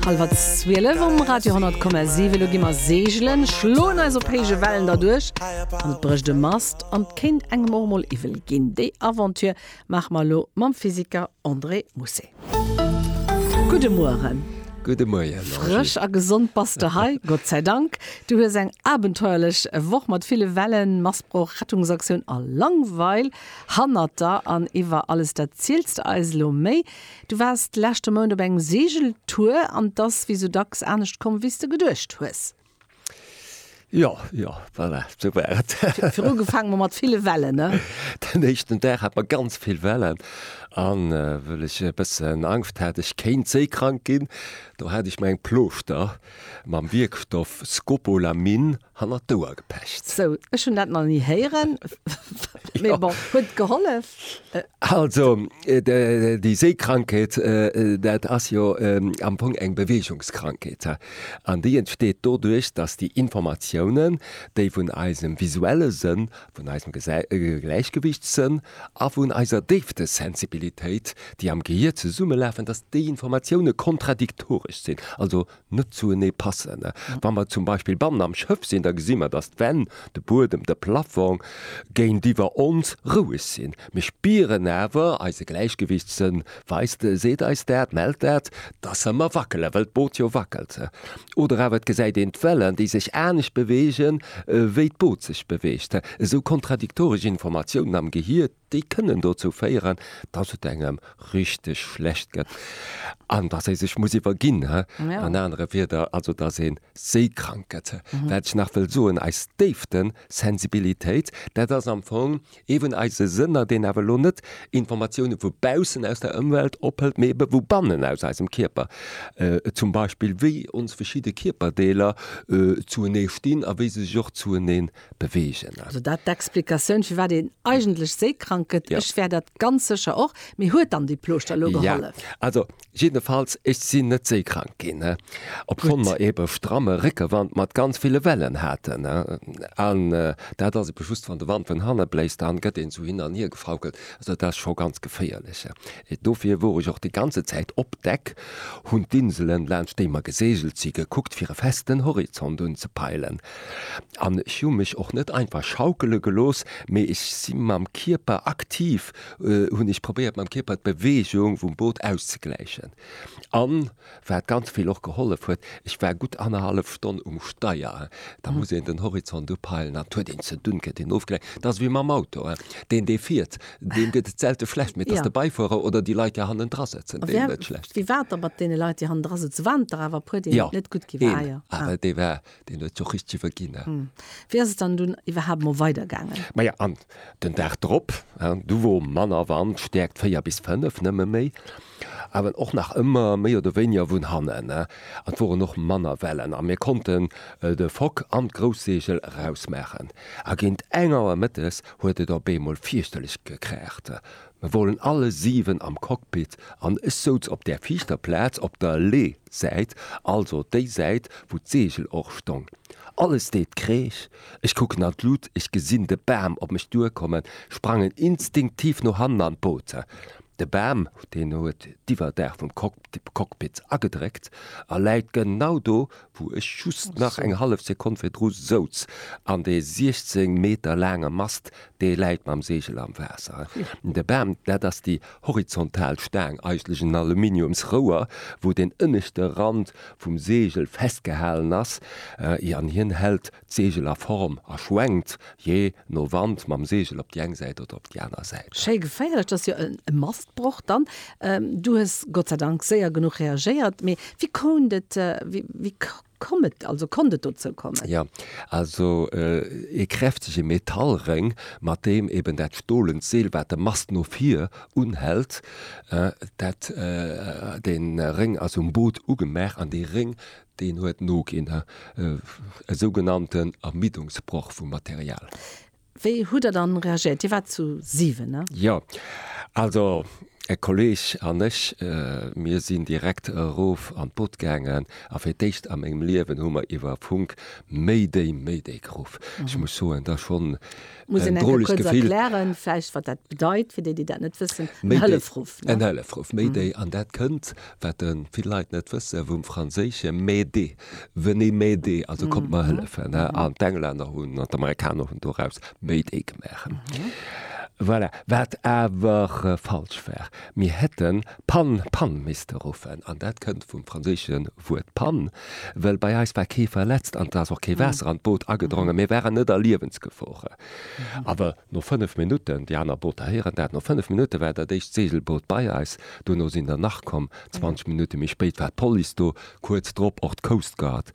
Halwer 12 um Radio 10,7. Elo gi mer seegelen, schloen eis op héije Wellen derduerch an et brécht e Mast an et kéint engem och emol iwwel ginn. Déi Aventure maache mer elo mam Physiker André Mousset. Gudde Mueren! Gudde Moien, Angie! Frësch a gesond bass de hei, Gott säi Dank. Du hues eng abenteuerlech Woch mat ville Wellen, Massbroch, Rettungsaktioun a Langweil hannert der. An iwwer alles dat ziels de eis elo méi. Du waars d'leschte Mount op engem Segeltour an 't ass wéi sou dacks anescht komm wéi s de geduecht hues. Jo, jo, voilà, sou war et. Viru gefaange mer mat ville Wellen, ne? Den éischten Dag hat mer ganz vill Wellen an wëll ech e bëssen Angscht hat ech kéint séikrank ginn, do hat ech mer eng Plooschter mam Wierkstoff Scopolamine hannert d'Ouer gepecht. Sou, ech hunn dat nach ni héieren, mee bon, huet gehollef. Also, déi Seekrankheet, dat ass jo am Fong eng Beweegungskrankheet. An déi entsteet doduerch, datt déi Informatiounen, déi vun eisem visuelle Sënn, vun eisem Gläichgewichtssënn a vun eiser Déiftesensibilitéit, déi am Gehier zesummelafen, datt déi Informatioune kontradiktoresch sinn, also net zuenee passen. Wa mer zum Beispill bannen am Schëff sinn, da gesi mer, datt d'Wänn, de Buedem, de Plaffong géintiwwer ons roueg sinn. Mir spieren awer, eise Gläichgewichtssënn weist, seet eis dat, mellt dat, datt se mer wackelen, well d'Boot jo wackelt. Oder awer et gesäit een d'Wellen, déi sech anescht beweegen, wéi d'Boot sech beweegt. Esou kontradiktoresch Informatiounen am Gehir. déi kënnen dozou féieren, dass et engem richteg schlecht gëtt an dass ee sech muss iwwerginn. An anere Wieder, also dass ee séikrank gëtt. Wat ech nach wëll soen, eis Déiftesensibilitéit, dat ass am Fong eeben eise Sënner, deen awer elo net Informatioune vu baussen aus der Ëmwelt ophëlt, mee ebe vu bannen aus eisem Kierper. Zum Beispill, wéi ons verschidde Kierperdeeler zuenee stinn a wéi se sech och zueneen beweegen. Also dat d'Explikatioun firwat een eigentlech séikrank gëtt. Ech wär dat ganz sécher och. Mee huet dann déi Plooschter elo gehollef? Jo, also jiddefalls ech sinn net séikrank ginn, obschonn mer ee stramme Réckewand mat ganz ville Wellen haten. An dat ass ebe just wann de Wand vun hanne bléist, dann gëtt een esou hin an hier gefaukelt. Also dat ass scho ganz geféierlech. Dofir wor ech och déi ganze Zäit op Deck, hunn d'Inselen laanscht déi mer geseegelt si gekuckt fir e festen Horizont unzepeilen. An ech hu mech och net einfach schaukele gelooss, mee ech si mam Kierper aktiv, hunn ech probéiert mam Kierper d'Beweegung vum Boot auszegläichen. An wat ganz vill och gehollef huet, ech war gutt annerhallef Stonn um Steier. Da muss een den Horizont upeilen an et huet een ze dunn, gëtt een ofgelenkt. Et ass ewéi mam Auto, deen dee fiert, deem gëtt et selte schlecht, mee et ass de Beifuerer oder déi Leit déi hannendra sëtzen, deenen et schlecht gëtt. Wéi war et da mat deene Leit déi hannendra sëtzen? Waren et der awer e puer, deenen et net gutt gi war? Een awer, dee war. deen huet jo richteg iwwerginn, ne? Hm. Wéi ass et dann dunn iwwerhaapt mol weidergaangen? Maja, an den Dag drop, du wor manner Wand, Stäerkt 4 bis 5 nëmme méi, awer och nach ëmmer méi oder wéiniger vun hannen, ne? An et woren och manner Wellen a mir konnten de Fock an d'Grousseegel erausmaachen. A géint eng Auer mëttes huet et op eemol fierchterlech gekraacht, Mir woren alle 7 am Cockpit an ech soutz op där viischter Plaatz op der Lee Säit, also déi Säit wou d'Segel och stong. Alles deet Kreesch, ech kucken an d'Luut, ech gesin de Bam op mech duer kommen, sprangen instinktiv no hannen an d'Boot. De Bam deen huet d'Iwwerdaach vum Cockpit agedréckt a läit genau do wou ech just nach eng hallef Sekonn virdru souz, an dee 16 Meter laange Mast, dee läit mam Segel am Waasser. De Bam, dat ass déi horizontal Staang, eigentlech en Aluminiumsrouer, wou deen ënneschte Rand vum Segel festgehalen ass, an hien hält D'Segel a Form a schwenkt jee no Wand mam Segel op déi eng Säit oder op déi aner Säit. Schéi geféierlech, dass jo e Mastbroch dann. Du hues Gott sei Dank séier genuch reagéiert. Mee wéi kount et, wéi koum et, also konnt et dozou kommen? Jo, also ee kräftege Metallréng, mat deem eben dat stolent Seel, wat de Mast no vir unhält, dat, dee Réng ass um Boot ugemaach an dee Réng, Deen huet no ginn, e sougenannten Ermüdungsbroch vum Material. Wéi hutt Der dann reagéiert? Dir waart zu 7, ne? Jo. Also e Kolleg an ech, mir sinn direkt erof an d'Boot gaangen a fir d'éischt a mengem Liewen hu mer iwwer Funk Mayday, Mayday geruff. Ech muss soen, da schonn Muss een enke kuerz erklären, vläicht, wat dat bedeit, fir déi, déi dat net wëssen, en Hëllefruff, ne? En Hëllefruff, Mayday. An dat kënnt, wat vill Leit net wëssen, vum Franséische m'aider, venez m'aider, also kommt mer hëllefen, ne? An d'Englänner hunn, an d'Amerikaner hunn doraus Mayday gemaach. Voilà, wat awer falsch war. Mir hätten Pan, Panne misste ruffen, an dat kënnt vum franséische Wuert panne, well bei eis war kee verletzt an et ass och kee Waasser an d'Boot agedrongen. Mir waren net a Liewensgefor. Awer no fënnef Minutten, déi aner Booter héieren dat, no fënnef Minutte war dat éischt Segelboot bei eis. Duerno sinn der nach komm, 20 Minutte méi spéit war d'Police do, Kuerz drop och d'Coast Guard.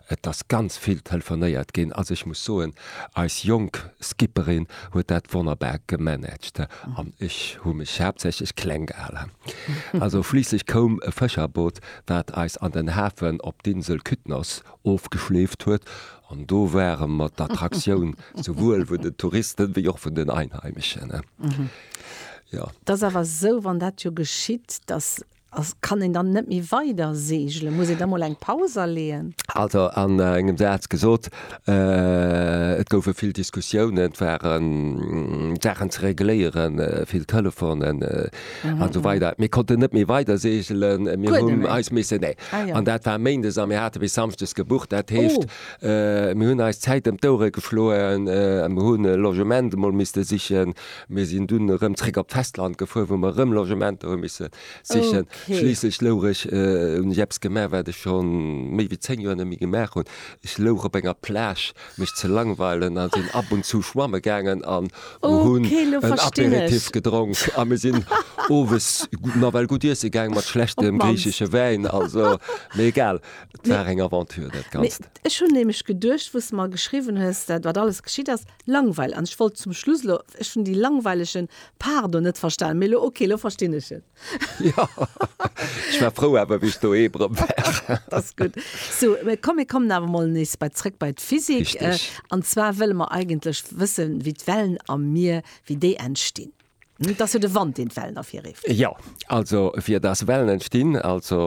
Et ass ganz vill telefonéiert ginn. Also ech muss soen, eis jonk Skipperin huet dat wonnerbar gemanagt an ech hu mech haaptsächlech kleng gehalen. Also schliisslech koum e Fëscherboot, wat eis an den Hafen op d'Insel Kytnos ofgeschleeft huet an do ware mer d'Attraktioun, souwuel vun den Touristen wéi och vun den Einheimeschen. Jo. T'ass awer esou, wann dat jo geschitt, dass. A kann een dann net méi weider seegelen? Muss een da mol eng Paus aleeën? Also an engem Saz gesot, et goufe vill Diskussiounen, et waren Saachen ze regléieren, vill Telefonen a sou weider. Mir konnten net méi weider seegelen, mir hunn eis missen, nee. An dat war méindes a mir hate bis samschdes gebucht. Dat heescht, mir hunn eis d'Zäit ëm d'Ouere geschloen a mir hu Logement emol misste sichen. Mir sinn dunn erëm zréck op d'Festland gefuer, wou mer erëm Logementer hu misse sichen. Okay. Schliisslech louch ech, äh, hunn ech eppes gemaach, wat ech scho méi wéi zéng Joer net méi gemaach hunn, ech louch op enger Plage, mech ze langweilen, a sinn ab und zu schwamme gaangen an hunn Okay, lo en verstinn ech. Aperitif gedronk. A mir sinn owes gu-, nawell gutt iesse gaang, mat schlechtem Opmannst. griichesche Wäin, also, mee egal, et war eng Aventure dat Ganzt. Ech hunn nämlech geduecht, wou s de mer geschriwwen hues, dat wat alles geschitt ass, Langweil, an ech wollt zum Schluss elo, ech hunn déi langweilegen Pardon net verstanen, mee elo ok, elo verstinn ech en. Jo, ech war frou awer, wéi ech doheem erëm war. Dat ass gutt. So, mä komm, mir kommen awer emol nees bei, zrëck bei d'Physik. Richtig. An zwar wëlle mer eigentlech wëssen, wéi d'Wellen am Mier, wéi déi entstinn. Et ass jo de Wand, deen d'Wellen ervirrift. Jo, also fir dass Wellen entstinn, also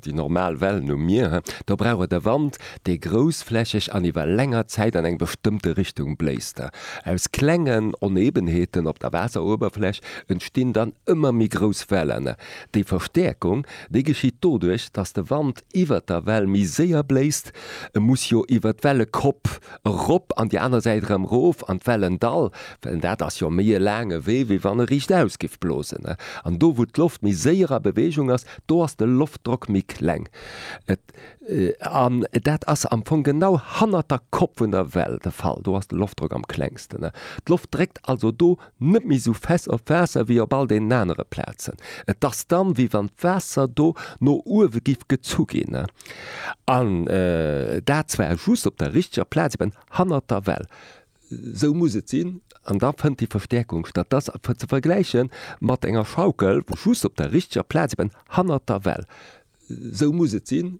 déi normal Wellen um Mier, do brauch et e Wand, dee groussflächeg an iwwer länger Zäit an eng bestëmmte Richtung bléist. Aus klengen Onebenheeten op der Waasseruewerfläch entstinn dann ëmmer méi grouss Wellen. Déi Verstäerkung, déi geschitt doduerch, dass de Wand iwwert der Well méi séier bléist, e muss jo iwwert d'Wellekopp erop an déi aner Säit erëm rof an d'Wellendall, well dat ass jo méi e laange Wee, wéi wann e riichtaus géif blosen. An do, wou d'Loft méi séier a Beweegung ass, do ass de Loftdrock méi kleng. An dat ass am Fong genau hannert der Kopp vun der Well de Fall, do ass de Loftdrock am klengsten. D'Loft dréckt also do Net méi sou fest op Waasser wéi op all deenen anere Plazen. Et ass dann, wéi wann d'Waasser do no uewe giff gezu ginn. An dat zwar just op der richteger Plaz, eben hannert der Well. Sou muss et sinn. An da fënnt déi Verstäerkung statt. Dat ass ze vergläiche mat enger Schaukel, wou just op der richteger Plaz, eben hannert der Well. Sou muss et sinn.